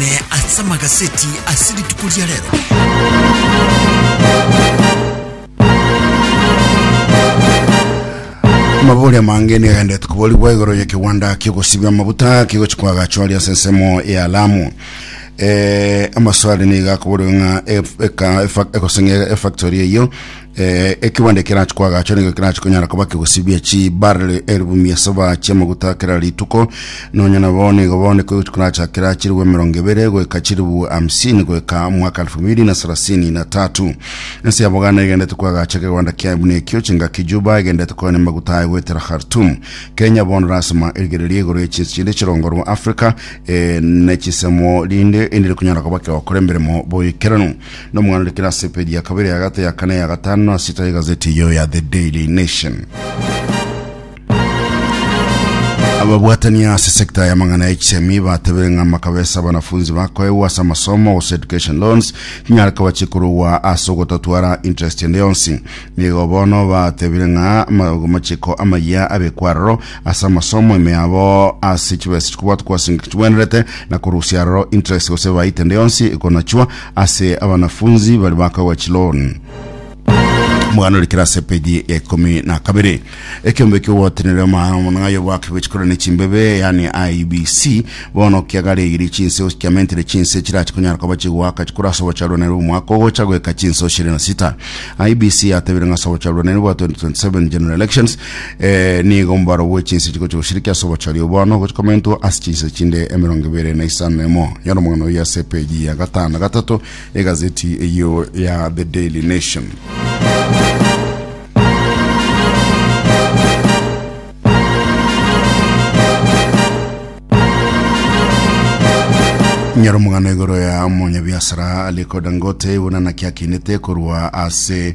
Ne ase amagaseti ase rituko ria rero. amabori amange nigo agendete koborigwa igoro ya kiwanda kiogosibia amabuta kigochi kwagachoria ase ensemo ya lamu eh, amaswali nigo akoborigwa ng'a ef- eka- efa- egoseng'e efactory eyo Eh, ekibande kerachi kwagacha nigo kerachi konyara koba kegosibia chi barley elfu mia saba chia maguta kera rituko nonya nabo nigo bone kogochi koracha kera chiribu emerongo ebere goika chiribu hamsini goika mwaka elfu mbili na sarasini na tatu ense ya boganda egendete kwagacha kegwanda kia buna ekio chingaki juba egendete koene maguta aye goetera khartum kenya bono rasima erigereria igoro ya chinsi chinde chirongorwa africa eh, ne chisemo rinde endire kunyara koba kegokora emeremo boikeranu Nomwana ore kera ase epeji ya kabere, ya gatato, ya kane, ya gatano na sita y'egazeti eyio ya The Daily Nation. Ababwatania ase sekta y'amang'ana ya HCME batebire ng'a makabesa abanafunzi bakoegwa ase amasomo gose education loans tinyare koba chikorogwa ase ogotatwara interest ende yonsi. Nigo bono batebire ng'a ma- amachiko amayia abekwa aroro ase amasomo ime yabo ase chibesa chikobwatwa kwasengeka chigwenerete na korusia aroro interest gose ebaita ende yonsi ekonachwa ase abanafunzi bari bakagwa chiloan omogano ore kere ase page ya ikomi na kabere ekiombe kiogwatenere omwana ng'ayo bwake bwechikora ne chimbebe yani IBC bono kiagaregiri chinse kiamentere chinse chirache konyara koba chigwaka chikora ase obocharwanere omwaka ogocha goeka chinse oshere na sita IBC yatebire ng'ase obocharwanere bwa 2027 general elections Eh, nigo omobaro bwe chinse chiko chigosiriki ase obochori obono gochikomentwa ase chinse chinde emerongo ebere na isano emo nyora omong'ana oyo ase epeji ya gatano na gatato egazeti eyo ya the daily nation nyora omong'ana igoro ya omonyabiasara aliko dangote bonana kiakinete korwa ase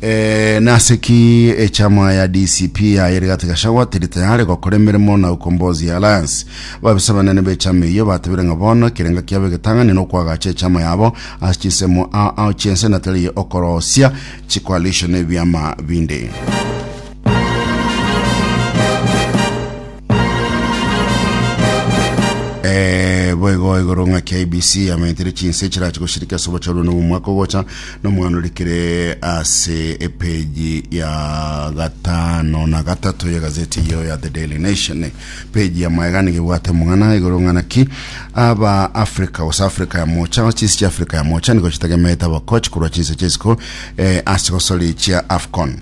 Eh, nase ki echama ya DCP yaye Rigathi Gachagua teri tayare gokora emeremo na Ukombozi Alliance? Babisa banene b'echama eyio batebire ng'a bono ekerengo kiabo egetang'ani nokwagacha echama yabo ase chinsemo ao ao chi'ense na tari okorosia chicoalition na ebiama binde. Eh, boigo igoro ng'a KBC amenyetire chinse chirache goshirika ase obocharwe na omwaka ogocha nomwana orikire ase epeji ya gatano na gatato ya gazeti iyo ya The Daily Nation peji ya maegani gebwate mong'ana igoro ng'ana ki aba Africa gose Africa ya mocha gose chinse chia Africa ya mocha nigo chitagemete abakochi korwa chinse chisiko eh, ase gosorichia AFCON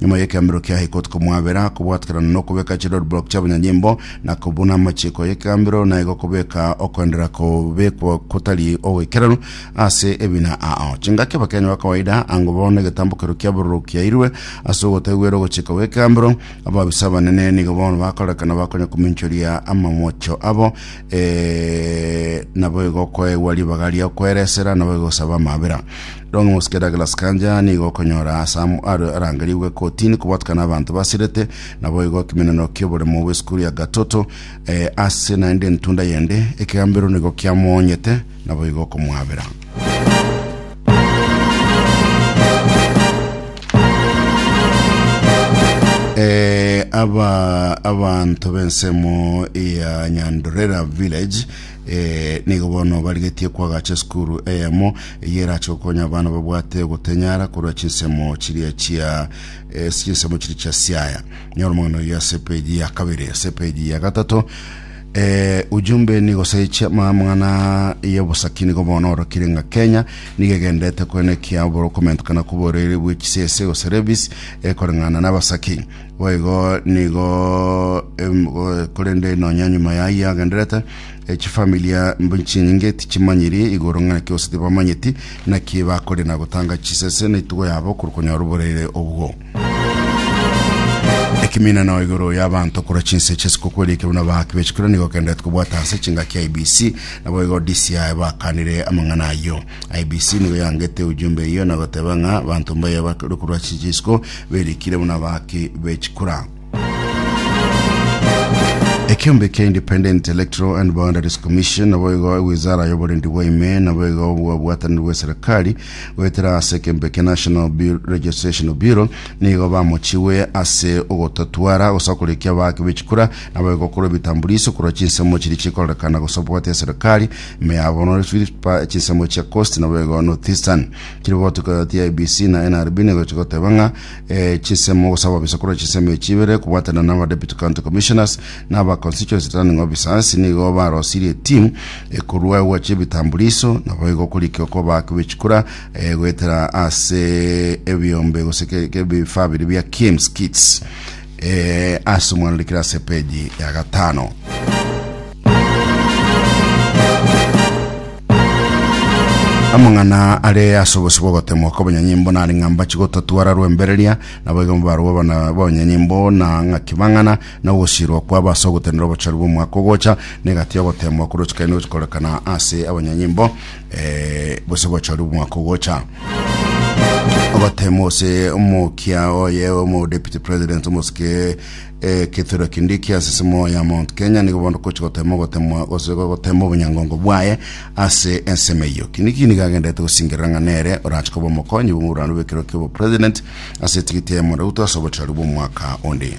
Nyuma y'ekeambero kia High Court komwabera kobwatekerana nokobeka chiroadblock chiabanyanyimbo na kobuna amachiko y'ekeambero naigo kobeka okoenderera kobekwa kotari ogoikeranu ase ebina ao chingaki abakenya bakawaida ango bono egetambokero kia bororo kiairwe ase ogotagwera ogochika gw'ekeambero ababisa abanene nigo bono bakorekana bakonya kominchoria amamocho abo e, naboigo koegwa ribaga ria kweresera naboigo gosaba amabera Rong'o mosike Douglas Kanja nigo okonyora Sam are arangerigwe kotini kobwatukana abanto basirete naboigo ekimeneno ki'oboremo bw'esukuru ya Gatoto eh, ase naende entunda yende ekegambero nigo kiamoonyete naboigo okomwabera. Eh, aba abanto b'ensemo ya Nyandorera Village Ee, nigo bono barigetie kwagacha esukuru eyemo eyio erache gokonya abana babwate ogotenyara korwa chinsemo chiria chia eh, chinsemo chiria chia siaya. Nyora omogano oyio ase epeji ya kabere. Ase epeji ya gatato eh, ujumbe nigo seichia amang'ana y'obosaki nigo bono orokire ng'a Kenya nigo egenderete koenekia oborokomento kana koborere bw'echisese gose levies ekoreng'ana n'abasaki. Boigo nigo em, go- korende nonya nyuma yaye agenderete eh, chifamilia mbu- chinyinge tichimanyiri igoro ng'a naki gose tibamanyeti naki bakore na gotanga chisese na itugo yabo korwa konyora oborere obwo ekiminano igoro y'abanto korwa chinse ch'esikuku eria ekebuna baaki b'echikura nigo okenderete kobwata ase chingaki ya IBC naboigo DCI bakanire amang'ana ayio IEBC nigo yangete ujumbe eyio na goteba ng'a abanto mbaye ba ruko rwa chinchiko berikire buna abaki bechikura. Ekiombe kia Independent Electoral and Boundaries Commission nabo igo ewizara y'oborendi bwa ime nabo igo obwabwataniri bw'eserikari goetera ase ekembe kia National Bu- Registration Bureau nigo bamochiwe ase ogotatwara gosa korekia abaki bechikura nabo igo korwa ebitambuliso korwa chinsemo chiri chikorekana gosa obwate eserikari Meyabonore Philippa echinsemo chia Coast nabo igo Northeastern. Chiri gotuka yoti ya ABC na NRB nigo chigoteba ng'a eh, chinsemo gosaba bisa korwa chinsemo echi ibere kobwatana na aba Deputy County Commissioners na aba Constituency Returning Officers nigo barosirie etimu ekorua egwacha ebitambuliso nabo igo korikio koba bechikura eh, goetera ase ebiombe gose ke- ke- ebifaa biri bia KIMS kits Ee, ase omwana rikire ase epeji ya gatano. amang'ana are ase obosio bw'ogotemwa kw'abanyanyimbo nare ng'a mbachi gotatwara rwembereria naboigo mbarwa abana b'abanyanyimbo na ng'a kibang'ana na ogosirwa kwabo ase ogotenena obochori bw'omwaka ogocha na egati y'ogotemwa korochikaine gochikorekana ase abanyanyimbo eh, gose gochori omwaka ogocha obatema ose omokia oye omo deputy president omosike eh, kithiro kindi kia nsisimo ya mount kenya nigo bondo kochi gotema ogotemwa gose gotema obonyangongo bwaye ase ensemo eyo kindi kindi gagendete gosingerera ng'a nere orache koba omokonyi bw'omorwano bw'ekero kia obopresident ase etigiti ya emona ruto ase obochori bw'omwaka onde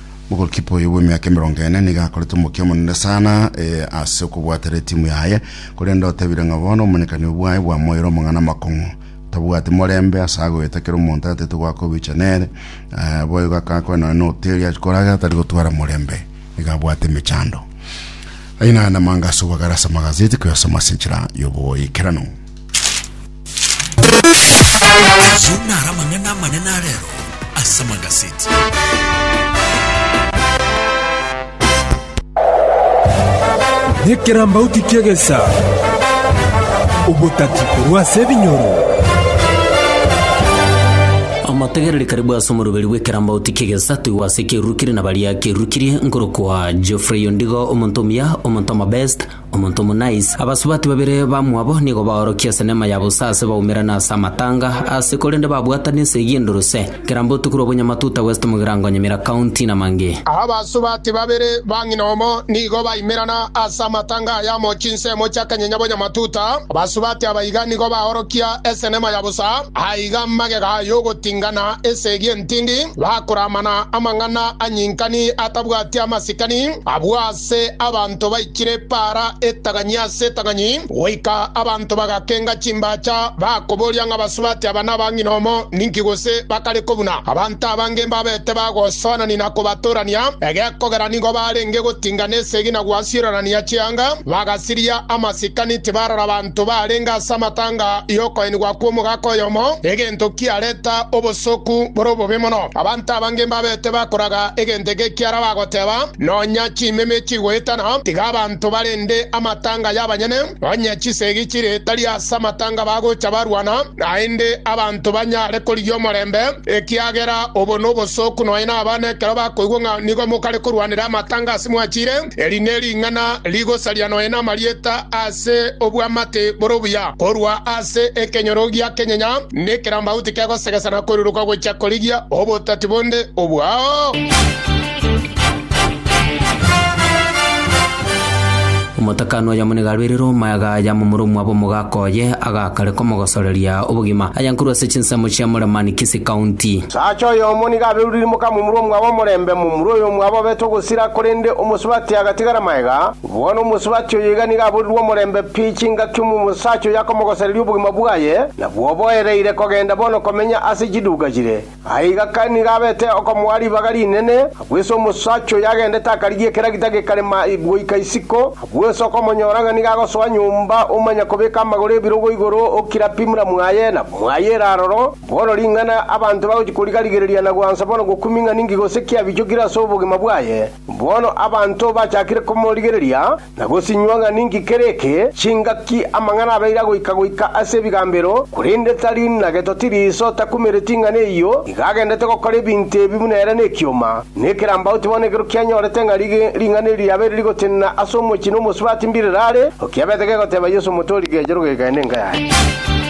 Mogolkipa oyo bw'emiaka emerongo ene nigo akorete omokia omonene sana eh, ase okobwatera etimu yaye, korende otebire ng'a bono omonyekanio bwaye bwamoire omong'ana amakong'u. Tabwati morembe ase agoeta kera omonto atete goaka obicha nere, eh, boigo akanga koe nonya n'oteri achi koragera tari gotwara morembe, nigo abwate emechando. Ayio nare namanga ase obogare ase amagazeti koyasoma ase enchera y'obogoikeranu. Ayio naro amang'ana amanene arero ase amagaseti. Nekerambauti ki'egesa, obotati korwa ase ebinyoro. Amategereri karibu ase omoruberi bw'ekerambauti ki'egesa toigwe ase ekerurukire na baria kerurukirie nkorokwa Geoffrey Ondigo omonto omuya omonto omobest Omonto omonais. Abasubati babere bamwabo nigo baorokia ase neema ya bosa aase baumerane ase amatanga aase korende babwatana esegi enduruse. Kera mbotuko korwa Obunyamatuta West mogirango Nyamira County na mangĩ. Abasubati babere ba ng'ina omo nigo baimerana aase amatanga aya amo chinsemo chia Kanyenya Bonyamatuta. Abasubati aba iga nigo baorokia ase neema ya bosa aiga magega yogotingana esegi entindi bakoramana amang'ana anyinkani atabwati amasikani abwo aase. Ase abanto baikire epaara etang'ani ase etang'ani, goika abanto bagakenga chimbaacha, bakoboria ng'a basubati aba nabang'ina omo ninki gose bakare kobuna abanto abange mbabete bagosoanania na kobatorania, egekogera nigo barenge gotinga nesegi na gwasiororania chianga, bagasiria amasikani, tibarora abanto. abanto barenge ase amatanga y'okoenigwa kw'omogaka oyomo, egento kiareta obosoku bore obobe mono. Abanto abange mbabete bakoraga egento eke ekiara bagoteba, Nonya chimeme chigoetana, tiga abanto barende amatanga y'abanyene, onye chisegi chire tari ase amatanga bagocha barwana, naende abanto banyare korigia omorembe, ekiagera obo nobosoku nonya nabana ekero bakoigwa ng'a nigo mokare korwanera amatanga ase mwachire. Eri nering'ana rigosaria nonya namarieta ase obwamate bore obuya korwa ase ekenyoro gia kenyenya nekerambauti kegosegesa na koruruka gochia korigia obotati bonde obwao. Omotakano oyomo niga arwaire Roma, agaaya momura omwabo omogaka oye, agaka. kare komogosoreria obogima, ayankorwa ase chinsemo chia more man Kisii County. Saacha oyomo nigo aberurire mokamomura omwabo omorembe, momura oyo omwabo abete ogosira, korende omosubati agatigara maega. Bono omosubati oyo iga nigo aborirwe omorembe pi chingaki omosaacha oyo akomogosereria obogima bwaye, na bwoboereire kogenda bono komenya ase chiduuka chire. Aye igaka nigo abete okomoa ribaga rinene, abwese omosacha oyo agendete akarigia ekera gita gekarema goika isiko, abwese okomonyora ng'a nigo agosoa nyomba omanya kobeka amagoro ebirogo igoro o kera pimura mwaye na mwaye ere aroro, bono ring'ana abanto bagochia koriga-rigereria na gwansa bono gokumi ng'a ninki gose ki abichokire ase obogima bwaye. Bono abanto bachakire komorigereria, Na gosinywa ng'a ninki kere eke, chingaki amang'ana abeire agoika goika ase ebigambero, korende tari na getoti riiso takumereti ing'ana eyio, iga agendete gokora ebinto ebi buna ere nekioma, ne ekerambauti bono ekero kianyorete ng'a ri ring'ana eri riabeire rigotenena ase omochie na omosubati mbirere are, okiabete gegoteba Yeso omotori, Gecha rogekae nenka yaye.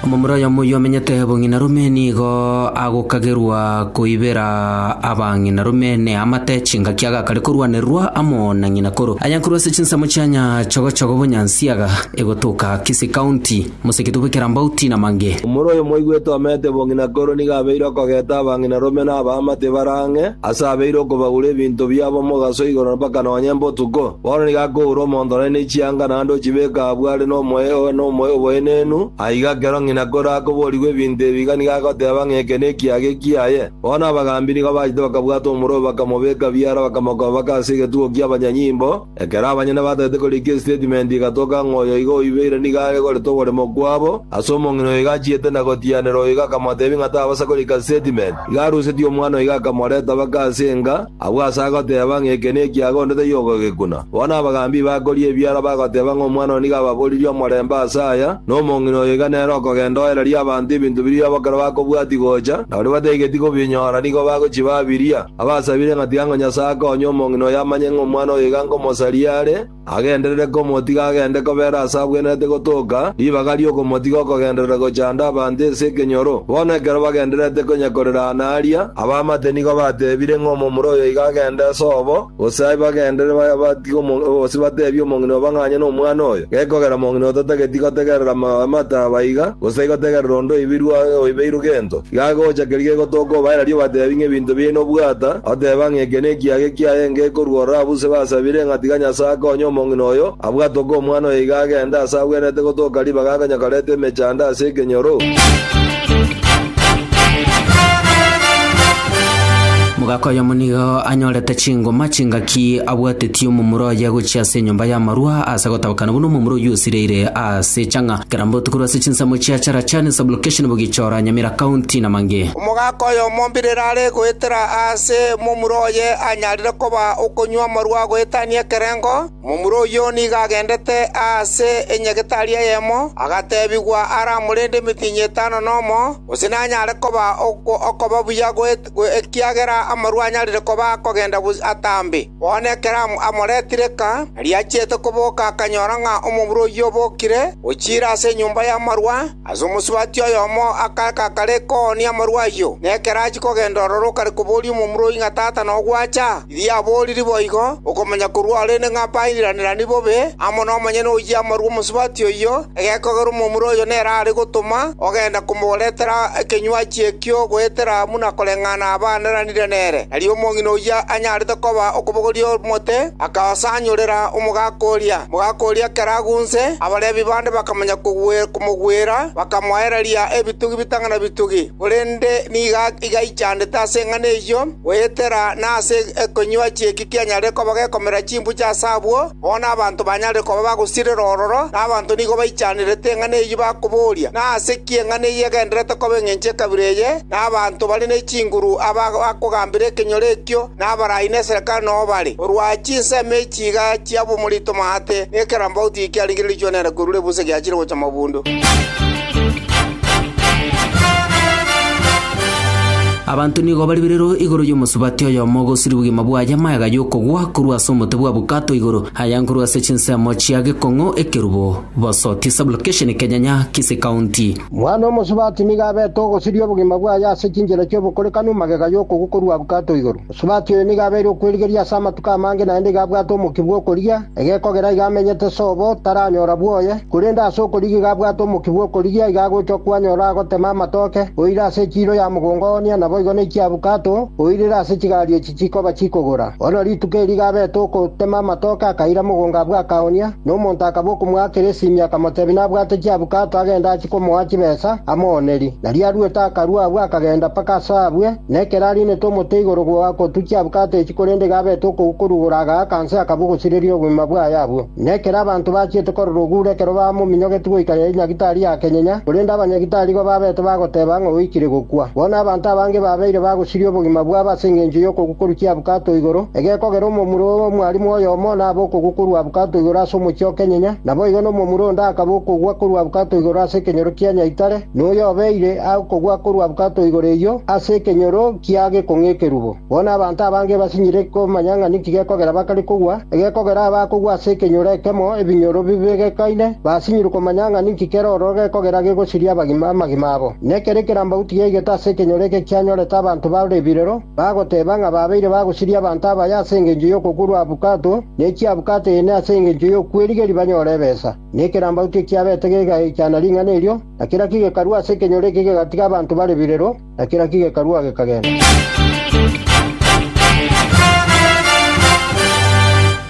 Omomura oyomo oyio omenyete bong'ina rume nigo agokagerwa koibera abang'ina rume neamate chingaki agakare korwanererwa amo na ng'ina koro ayankorwa ase chinsemo chianya chogo chogo bonyansiaga egotoka Kisii County. Moseketo bw'ekerambaut na mange. Omoro oyo mwaigwete omeete bong'ina korwe nigo abeire okogeta abang'ina rome na abama tibare ang'e, ase abeire okobagura ebinto biabo omogaso igoro mpaka nonya embotuko. Bono nigo akoura omonto nari ne chianga naende ochibeka abwo are nomoe oe nomoe oboenenu, aiga ekero ng'ina korwa akoborigwa ebinto ebi iga nigo agoteba ng'a eke nekiaga ekiaye. Bono abagambi nigo bachete bakabwata omoro oyo bakamobeka biara bakamokoba baka ase egetugo ki'abanyanyimbo. Ekero abanyene batagete korika esitatimenti igatoka ng'a oyo iga oibeire nigo are goreta oboremo bwabo, ase omong'ina oyo iga achiete na gotianera oyo iga akamoteebia ng'a tabasa korika sitatimenti. Igo arusetie omwana oyo iga akamoreta baka ase enga, abwo ase agoteeba ng'a eke nekiaga onde taiyo ogogekuna. Bono abagaambi bakoria ebiara bagoteeba ng'a omwana oyo nigo ababoririe omorembe ase aya, na omong'ina oyo iga nere okogenda oereria abanto ebinto biria bokero bakobwatia gocha, na baria bataigeti kobinyora nigo bagochibabiria. Abasabire ng'a tiga ng'a Nyasae akonye omong'ina oyo amanye ng'a omwana oyo iga nkomosaria are, agenderere komotiga agende kobera aase abwenerete gotoka, ribaga ri'okomotiga okogenderera gochanda abanto ase ekenyoro. Bono ekero bagendererete konya korera aana aria, abaamate nigo bateebire ng'a omomura oyo iga agende ase obo, gose aye bagenderere batige omong'ina, gose bateebie omong'ina obo ng'a onye nomwana oyo. Gekogera mong'ina otatageti gotegerera amate aba iga, gose gotegerera onde oibirwe oibeirwe gento. Gagocha keria gegotoka obaerarie obatebi ng'a ebinto biaye nobwata, oteba ng'a eke nekiaga ekiaye ngekorua ororo abwo ase basabire, ng'a tiga Nyasae akonye omong'ina oyo, abwo atoka omwana oyo iga agende aase agwenerete gotoka ribaga akonye koreta emechando ase ekenyoro. Mogaka oyomo nigo anyorete chingoma chingaki abwatetie omomura oye gochia ase enyomba y'amarua ase gotabakana buna omomura oyio osireire ase echang'a, kera mbotuko ase chinsemo chia Charachani sub-location Bugichora, Nyamira County, na mangĩ. Omogaka oyomo mbirire are goetera aase momura oye anyarire koba okonywa amarwa agoetania ekerengo, momura oyio nigo agendete aase enyagetari eyemo, agatebigwa aramorende emitinyi etano nomo, gose nanyare koba okoba buya goetania. ekiagera amarua anyarire koba akogenda bosio atambe. Bono ekero amore etirika, aria achiete koboka akanyora ng'a omobura oyio obokire ochiire ase enyomba y'amarua ase omosubati oyomo akaaka kare koonia amarua ayio. Na ekero achia kogenda ororo okare koboria omomura oyio ng'a tata nogwacha. Erio aboorire boigo, okomanya korwa ore inde ng'a bairiranirani bobe amo nomonyene oyio amarue omosubati oyio, egekogera omomura oyo nere are gotoma ogenda komoretera ekenywa achie ekio goetera buna koreng'ana abaaneranire nere. Erio omong'ina oyio anyarete koba okobogoria omote, akaosanyorera omogaka oria. Mogaka oria ekero agunse, abarebi bande bakamanya komogwera, bakamoereria ebitugi bitang'ana bitugi, korende nigo igaichandete ase eng'ana eyio. Goetera nase ekonywa chi'eki kianyare koba gekomera chimbuchi ase abwo, bono abanto banyare koba bagosirera ororo, na abanto nigo baichanerete eng'ana eyio bakoboria, Nase ki eng'ana eyio egendererete koba engencho y'ekabira eye, na abanto bare ne chinguru aba bakogambera ekenyoro ekio, na abarai neserekare noyo bare, korwa chinsemo echi? Chigachia bomorito omoate, na ekerambauti eki kiaringiririchwe nere korwa ebusa egiachire gocha mabundu. Abanto nigo bari birero igoro y'omosubati oyomo ogosiria obogima bwaye amayaga y'okogwa korwa ase omote bwa bukato igoro aya nkorwa ase chinsemo chia gekong'o ekerubo Bosoti Sublocation Kenyanya Kisii County. Mwana omosubati nigo abete ogosiria obogima bwaye ase chinchera chi'obokorekanu magega y'okogwa korwa bukato igoro. Sabato eye nigo abeire okwerigeria ase amatuko amange naende iga abwate omokia bw'okorigia, egekogera iga amenyete sobo, taranyora bwoye. Korende ase okorigia iga abwate omokia bw'okorigia, iga agochwa kwanyora agotema amatoke, oirire ase ekiiro ya mogongo ooonia, naboigo nekiabukato, oirire ase chigari echi chikoba chikogora. Bono rituko eri iga abete okotema amatoke akaira mogongo abwo akaoonia, na omonto akaba okomoakera esimi akamotebia nabwate kiabukato agende achie komoa chibesa amoonerie. Nario aruete akarua abwo akagenda mpaka ase abwe, Na ekero ariinete omote igoro gotukia abwo katechi korende iga abete okogukurugura agaaka inse akabua ogosireria obogima bwaye abwo. Na ekero abanto bachiete korora ogure ekero bamominyogeti goika riaria nyagitari yakenyenya, korende abanyagitari igo babete bagoteba ng'a oikire gokwa. Bono abanto abange babeire bagosiria obogima bwabo ase engencho y'okogukurukia abukato igoro, egekogera omomura omwarimu oyomo nabe okogukurwa abukato igoro ase omochie okenyenya, naboigo nomomura onde akaba okogwa korwa abukato igoro ase ekenyoro kia nyaitare. Noyobeire agokogwa korwa bwato igoro eyio ase ekenyoro kia gekong'u ekerubo. Bono abanto abange basinyire komanya ng'a ninki gekogera bakare kogwa. Egekogera abakogwa ase ekenyoro ekemo ebinyoro bibegekaine, basinyirwe komanya ng'a ninki kera ororo gekogera gegosiria abagima amagima abo. Nekero ekerambagu tigeigete ase ekenyoro eke kianyorete abanto bare ebirero, bagoteba ng'a babeire bagosiria abanto abaye ase engencho y'okogurwa bwato, ne chiabwate ene ase engencho y'okwerigeria banyore ebesa. Na ekerambau tikiabete gegaichana ring'ana erio, na kera ki gekarua ase ekenyoro eke kegatiga abanto bare birero, na kera ki gekarua gekagenda.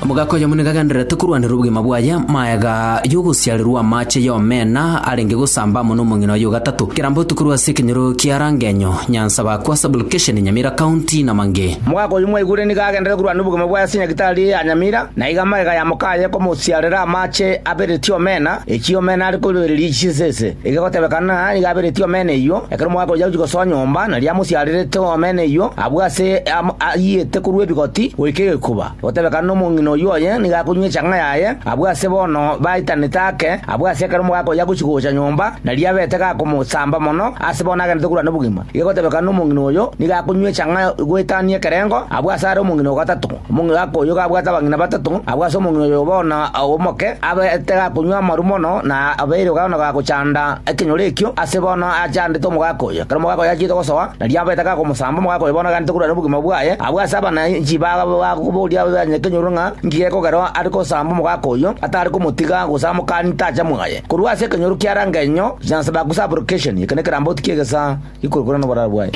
Omogaka oyomo nigo agendererete korwanera obogima bwaye amaega y'ogosiarerwa amache y'omena arenge gosamba amo n'omong'ina oye o gatato. Ekerambau tokorwa ase ekenyoro kia Rangenyo, Nyansabaku ase Aborikesheni, Nyamira County, na mang'e. Omogaka oyio mwaigure nigo agendererete korwanera obogima bwaye ase Nyagitari ya Nyamira. Na iga magega ya moka aye komosiarera amache abereti omena, ekiagera omena are koiroereria chinsa ense. Egegotebekana nigo abereti omena eyio, ekero mogakoyia gochia gosoa nyomba, nario amosiarerete omena eyio abwo ase ayiete korwa ebigoti goika egekuba. Gotebekana nomong'ina oyio oye nigo akonywa echang'a yaye abwo ase bono baitanete ake, abwo ase ekero mogakoyia gochia gocha nyomba, nario abete gakomosamba mono ase bono agenderete korwa nobogima. Egegotebekana nomong'ina oyo nigo akonywa echang'a goetania ekerengo abwo ase are omong'ina o gatato. Omong'igako oyio gabwate abang'ina batato, agwo ase omong'ina oyo bono omoke, abete gakonywa amaru mono, na abeire bono gagochanda ekenyoro ekio, ase bono achandete omogaka oyo. Ekero omogaka oyo achete gosoa, nario abete gakomosamba omogaka oyo bono aganete korwa nobogima bwaye. Abwo ase abananchi bakaboria abanyakenyoro ng'a inki gekogerwa are gosamba omogaka oyo atare komotiga gose amokanie tacha mwaye. Korwa ase ekenyoro ki'Arang'enyo, Jansbachus Application, eke nekeramboti ki'egesaa. Ikorokoro noboraro bwaye.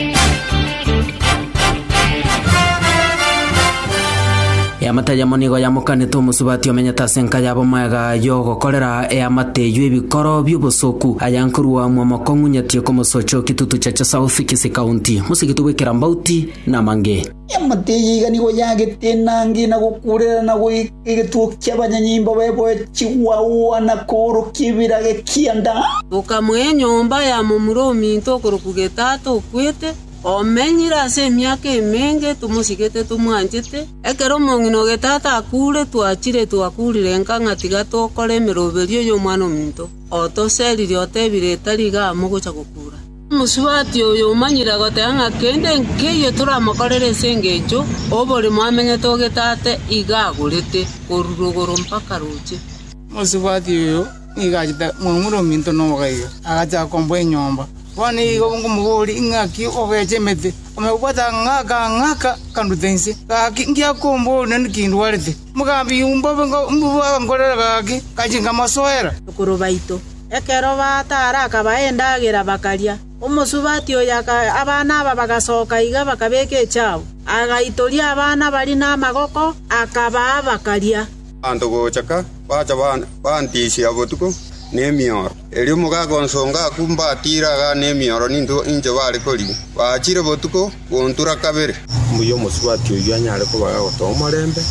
Eamate eyemo nigo yamokanete omosubati omenyete ase enka y'abomoega y'ogokorera eamate eyio ebikoro bi'obosoku, aya nkorua mwamokong'u nyatie komosocho Kitutu Chacha South, Kisii County. Mosigiti bw'ekerambauti namange. Eamate eye iga nigo yaagete enanga eye na gokuurera na goika egetugi ki'abanyanyimbo baye boechigwa oa na koorokia ebiraga ekianda. Okamoa enyomba ya momura ominto okorokwa Getato okwete, omenyire ase emiaka emenge, tomosigete tomwanchete. Ekero omong'ina o Getato akuure, twachire twakuurire nka ng'a tiga tokore emeroberio y'omwana ominto. Otoseerire otebire, Tari igaa mogocha gokuura. Omosubati oyo omanyire agoteba ng'a kende nkeyio toramokorere ase engencho oborimo amenyete oge Tata iga agorete, korwa rogoro mpaka roche. Omosubati oyo nigo achete momura ominto noboga iga, agachaka komboa enyomba. Bono igo nkomoboria, Ing'aki ogecha emete? Omobwate agang'aka agang'aka akanduta inse. Gaki, ngiakomboria nonye naki ndwarete. Mogambi, imbobe nkamobogokorera gaki, ngachia nkamosoera.” Bakuru baito. Ekero bataara akabaha endagera, bakaria. Omosubati oyo akaira abana aba bagasoka iga bakabeka echiabo. Agaitoria abana baria namagoko, akabaha bakaria. Abanto gocha ka bacha bantisia botuko nemioro. Erio mogaaka onsongo aku mbatiire agane emioro ninto inche baare kori, baachire botuko gontura kabere. Mbuya omosubati oyio anyare kobaga gotoa omorembe,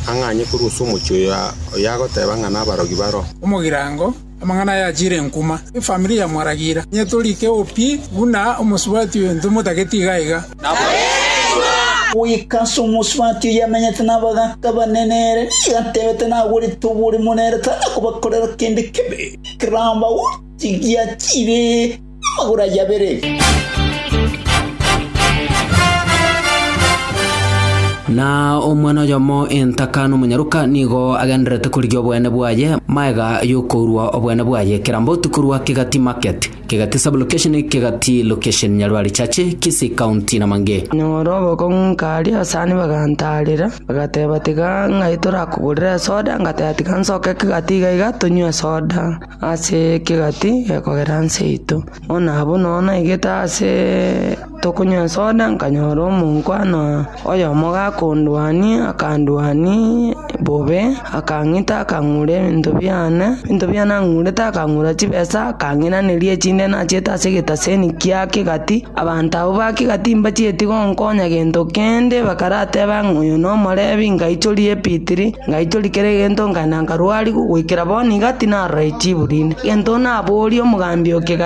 ang'anye korwa ase omochie oyo agoteeba ng'a nabarogi baro. Omogirango, amang'ana aya achiire enkuma. Efamiri ya Mwaragira, inye tori keo pi buna omosubati oyo, ntomotagete iga iga. Goika ase omosubati oyio amenyete nabagaaka banene ere nigo atebete nagwerete oborimo nere tari kobakorera kende kibe, ekeramba gotigia chiire namagoro ayio abere. Na omwana oyomo entaka nomonyaroka nigo agendererete korigia obweene bwaye magega y'okourwa obweene bwaye ekeramba otikorwa kegati market. Kegati Sub-location Kegati Location Nyarwari Chache Kisii County na Mange. Nyora obokong'u nkaria asani bagantarera bagateba tiga ng'ai torakogorere esoda ngateba tiga nsoke kegati iga iga tonywe esoda ase kegati gekogera nse yaito bono abwo nonya naigete ase Tokonyesooda nkanyora omonkwana oyomo gakondwania, akandwania bobe, akang'ita, akang'ura ebinto biane, ebinto biane ang'urete, akang'ura chibesa, akang'inaneria echinde nachiete ase egetaseni kiake gati, abanto abwo ba kegati mbachieti gonkonya gento kende, bakarateba ng'a oyo nomorebi, ngaichoria ebitiri, ngaichoria kera egento, nkaenda nkarwariwa, goikera bono iga tinaroreti chiburi inde. Egento naboria omogambi o kegati.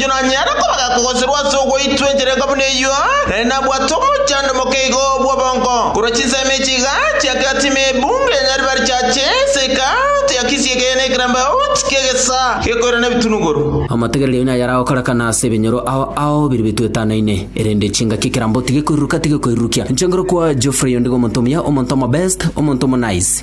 Inche nanyare komanya kogosirwa ase ogwaitwa enchera enka buna eyio, naende nabwate omochando omoke igo bw'obongo, korwa chinsemo echi iga chiakerati ime ebunga ya Nyaribari chiache eseeka ya kisii ekeyana ekerambaoti ki'egesaa gekoirana ebitunuguru. Amategereri aino ayare agokorekana ase ebinyoro ao ao biria bitoetanaine, erinde chingaki ekerambaoti gekoiruruka tigekoirurukia. Inche nkorokwa Geoffrey ondigo omonto omuya, omonto omobest, omonto omonice.